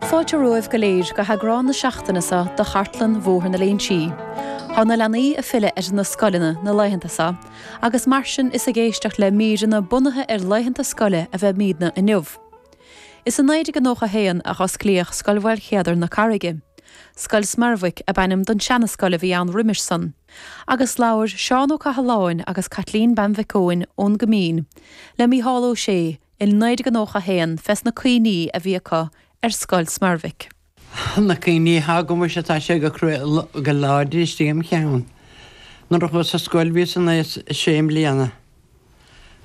Fáilte romhaibh go léir go heagrán na seachtaine seo de chartlann Bhóthar na Léinsí. Tá na leanaí ag filleadh ar na scoileanna na laethanta seo agus mar sin is ag éisteacht le míreanna bunaithe ar laethanta scoile a bheimidne inniu. Is i 1991 a osclaíodh Scoil Mhaolchéadair na Carraige. Scoil Smeirbhic ab ainm don seana-scoil a bhí ann roimis sin. Agus labhair Seán Ó Cathaláin agus Caitlín Bean Mhic Eoin ón gCoimín le Mícheál Ó Sé, I 1991 fé na cuimhní a bhí acu ar Scoil Smeirbhic. Na cuimhní atá agamsa tá sé go cruaidh go láidir istigh im cheann. Nuair a chuas sa scoil bhíos in aois sé mbliana.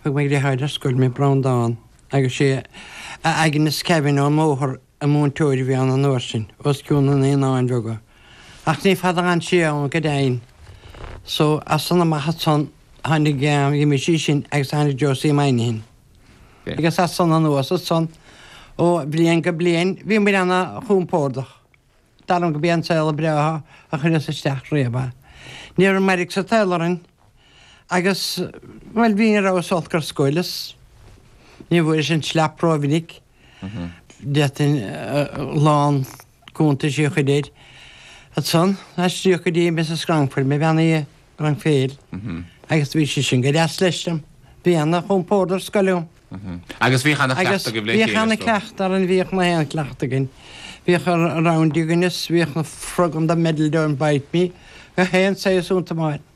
Thug mo dheartháir ar scoil mé Breandán agus is é Aignéas Kevane ón mbóthar a múinteoir a bhí ann an uair sin, os cionn na Naíonáin Bheaga, ach ní fada a fhan sé ann go deimhin. So, as san amach ansan, tháinig Jim Sheehan agus tháinig Josie Moynihan. Agus as san anuas ansan, ó bhliain go bliain, bhíomar ana chompordach. Dar liom gurb é an saol breá a chuireas isteach riamh é. Ní raibh mairg sa tsaol orainn. Agus, bhuel, bhí, ní raibh súil le scoil is ní bhfuaireas an tslat rómhinic. D'fhéadfainn a lán cuntaisí a chur air. Ansan, aistríodh go dtí Mrs. Grangeford, mo bhean i Rang a hAon, agus bhí sí sin go deas leis linn. Bhí ana chompórd ar scoil ann. Agus bhíodh ana chleachtadh agaibh le chéile, is dóigh? Bhíodh ana chleachtadh againn, bhíodh gach aon chleachtadh againn. Bhíodh rounders againn is bhíodh na froganna, in the middle don't bite me, gach aon saghas iontu, Máire.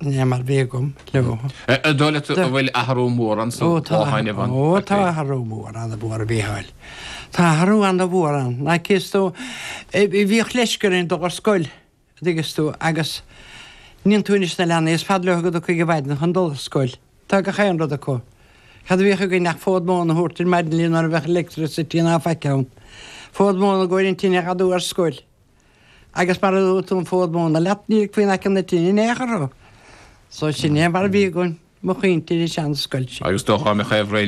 Sin é mar bhí agam leo. Ar dóigh leat go bhfuil athrú mór ann sa Bhotháin, Evan? Ó, tá athrú mór ann, a Mhichíl. Tá athrú an-mhór ann. Like, is tú, bhíodh leisce orainn dul ar scoil, an dtuigeann tú, agus cíonn tú anois na leanaí, is fada leo go dtiocfaidh an mhaidin chun dul ar scoil. Tá gach aon rud acu. Cad a bhíodh againn ach fód móna a thabhairt ar maidin linn ní raibh aon electricity ná faic ann. Fód móna i gcomhair na tine a fhadú ar scoil. Agus mara dtugthá an fód móna leat, ní ligfí in aice na tine in aon chor thú. So sin é mar a bhí againn, mo chuimhní den sean-scoilse. Agus do dhoghadh mé chaor